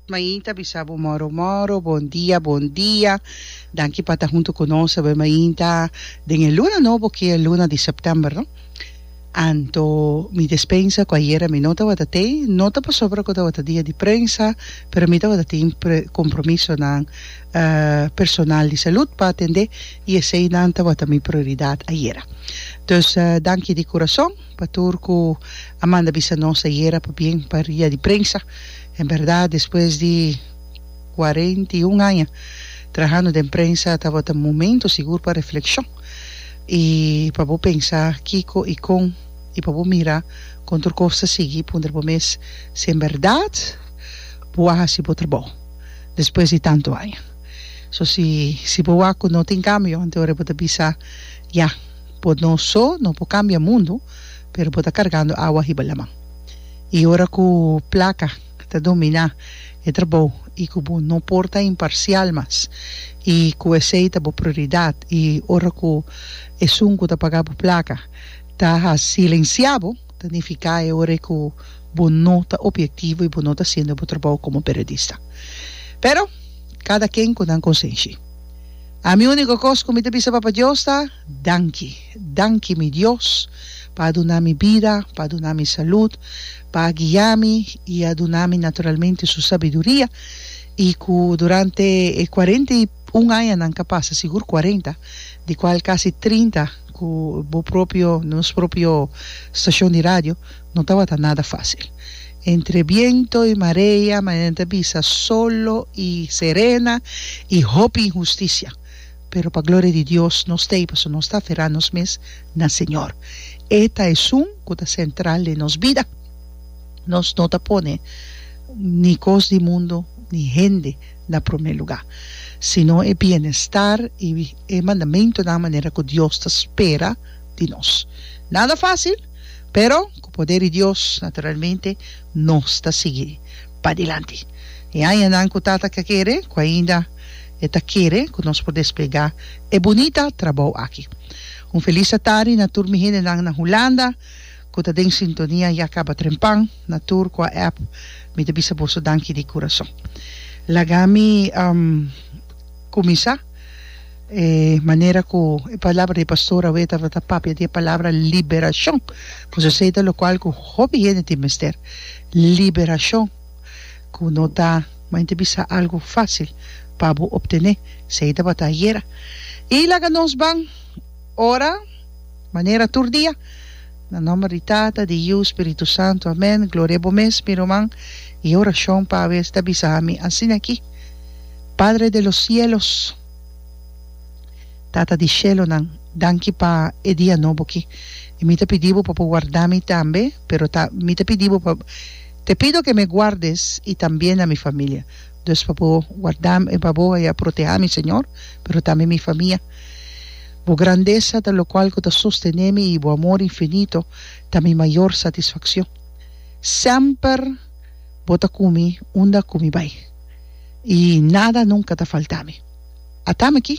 Mainta bisa bo moro moro bon dia bon dia danki pa ta hunto cu nos awe mainta den e luna nobo ki e luna di september no anto mi despensa cu ayera mi no tawata te no ta pasobra cu tawata dia di prensa pero mi tawata tin compromisonan personal di salud pa atende y esey nan tawata mi prioridad ayera dus danki di curason. Pa tur cu a manda bisa nos ayera pabien pa ria di prensa. En berdad despues di cuarenta y un aña trahando den prensa tabata momento sigur pa reflexion y pa bo pensa kico y con y pa bo mira con tur cos ta sigui puntra bo mes si en berdad bo a haci bo trabao despues di tanto aña. So si si bo wak cu no tin cambio anto ora bo ta bisa ya. Bo no so no por cambia mundo, pero bo ta cargando awa hiba laman. Y ora cu placa ta domina e trabou y cu bo no por ta imparcial mas y cu esey ta bo prioridad y ora cu esun cu ta paga bo placa ta silencia bo, ta nifica e ora cu bo no ta obiectivo y bo no ta haciendo bo trabou como periodista. Pero cada ken cu nan consenshi. Ami único cos cu mi ta bisa Papa Dios ta, Danki, danki mi Dios pa a duna mi bida, pa a duna mi salud, pa a guia mi y a duna mi naturalmente su sabiduria y cu durante e cuarenta y un añanan ca pasa, sigur cuarenta, di cual casi trinta cu bo propio, nos propio stacion di radio, No tabata nada fácil. Entre biento i marea, Marianita a bisa, solo i serena, i hopi inhustisia. Pero pa gloria di Dios nos ta ei pasobra nos ta aferá nos mes na Señor. E ta Esun ku ta sentral den nos bida. Nos no ta pone ni kos di mundu ni hende na promé lugá, sino e bienestar i e mandamentunan manera ku Dios ta spera di nos. Nada fácil! Pero ku poder di Dios, naturalmente, nos ta sigui padilanti. E añanan ku Tata ta kere, ku ainda E ta kere ku nos por desplegá e bunita trabou aki. Un felis atardi na tur mi hendenan na Hulanda ku ta den sintonia ya kaba trempan, na tur ku a app, mi ta bisa boso danki di kurason. Laga mi. Kuminsá e manera ku e palabra di pastor awe tabata papia di e palabra liberashon, pues esei ta lokual ku hopi hende tin mester, liberashon ku no ta mente bisa algu fásil pa bo optené, esei tabata ayera. I laga nos ban ora manera tur dia, na nòmber di Tata, di Yu, Spiritu Santu, amèn. Gloria a bo mes mi ruman, i e orashon pa awes ta bisa ami asina aki. Padre de los cielos, Tata di shelonan, danki pa e dia nobo ki. I mi ta pidi bo pa bo warda mi tambe, pero ta mi ta pidi bo pa te pido ke me guardes i también a mi familia. Dus pa bo warda mi pa bo a proteha mi Señor, pero tambe mi famia. Bo grandesa ta lokual ku ta sostené mi i bo amor infinito ta mi mayor satisfakshon. Semper bo ta ku mi unda ku mi bai. i nada nunka ta faltá mi. Atame ki,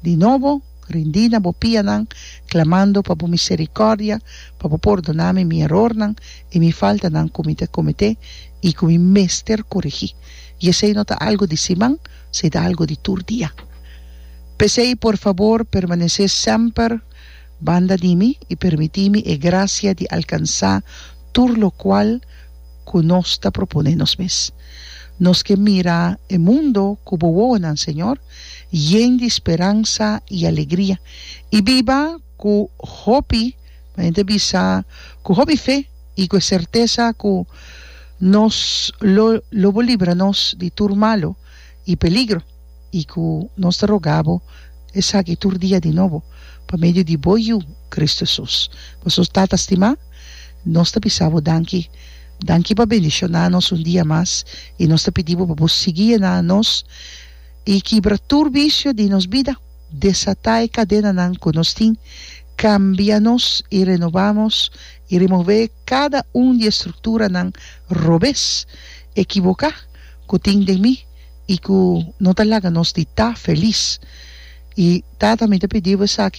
di nobo, rindí na bo pianan, klamando pa bo miserikòrdia, pa bo pordoná mi mi erornan i mi faltanan ku mi ta kometé i ku mi mester koregí. I esei no ta algu di siman, sí ta algu di tur dia. P'esei, por fabor, permanesé semper banda di mi i permití mi e grasia di alkansá tur lokual, ku nos ta proponé nos mes. Nos ke mira e mundo ku Bo wowonan, Señor, yen di speransa i alegria, i biba ku hopi, mi hende bisa, ku hopi fe i ku e sertesa ku nos lo lo Bo libra nos di tur malu i peligro. i ku nos ta rogá bo esaki tur dia di nobo, pa medio di bo Yu, Kristu Hesus. Pasobra, Tata stimá, nos ta bisa bo danki. Danki pa bendishoná nos un dia mas, i nos ta pidi bo pa bo sigui yená nos i kibra tur visio di nos bida. Desatá e kadenanan ku nos tin, kambia nos i renobá nos, i remové kada un di e strukturanan robes, ekiboká, ku tin den mi. i ku no ta laga nos di ta felis. I Tata, mi ta pidi bo esaki.